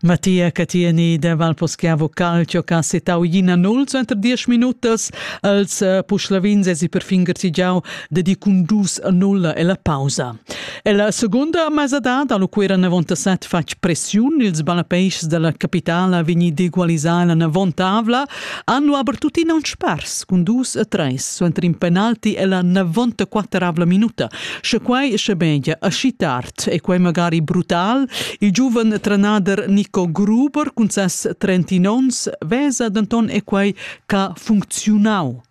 Mattia Catini de Valposchiavo Calcio che ha settau ina nol suenter diesch minutas els eh, puschlavins e si perfin garzigiau de di cun dus a nulla e la pausa. E la seconda mesadad allo quera 97 fatg pressiun ils ballapeischs della capitala vegni d'egualisar la navontavla Hanno aber tuttina un spars cun dus e treis suenter in penalti e la 94 minuta. Sche quai sche media aschi tard e quai magari brutal, il giuven trenader Nico Gruber cun ses 30 ons vesa denton e quai ca funcziunau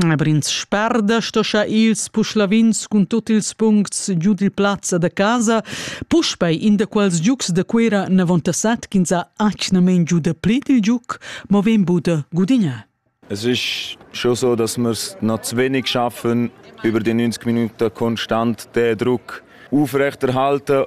Aber ins sperda sto scha ils puschlavins cun tut ils puncts giu dil plaz da casa puspei in da quels giugs da Cuera 97 ch'ins ha atgnamein giu da pli dil giug, mo vegn buca gudignar. Es ist schon so, dass wir es noch zu wenig schaffen, über die 90 Minuten konstant den Druck aufrechterhalten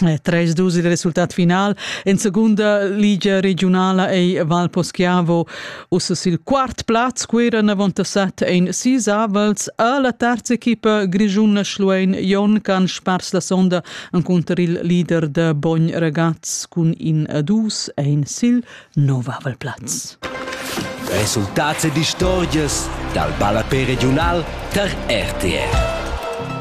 3-2 il resultat final. En segunda ligia regionala ei Val Poschiavo ussa sil quart plaz, Quera Navontasat ein sis avels. A la terza equipa grischuna Schluein Jon can spars la sonda enconter il leader de Bogn Ragaz cun in a dus ein sil nov avel plaz. Resultats e distorgias dal ballapè regional tar RTR.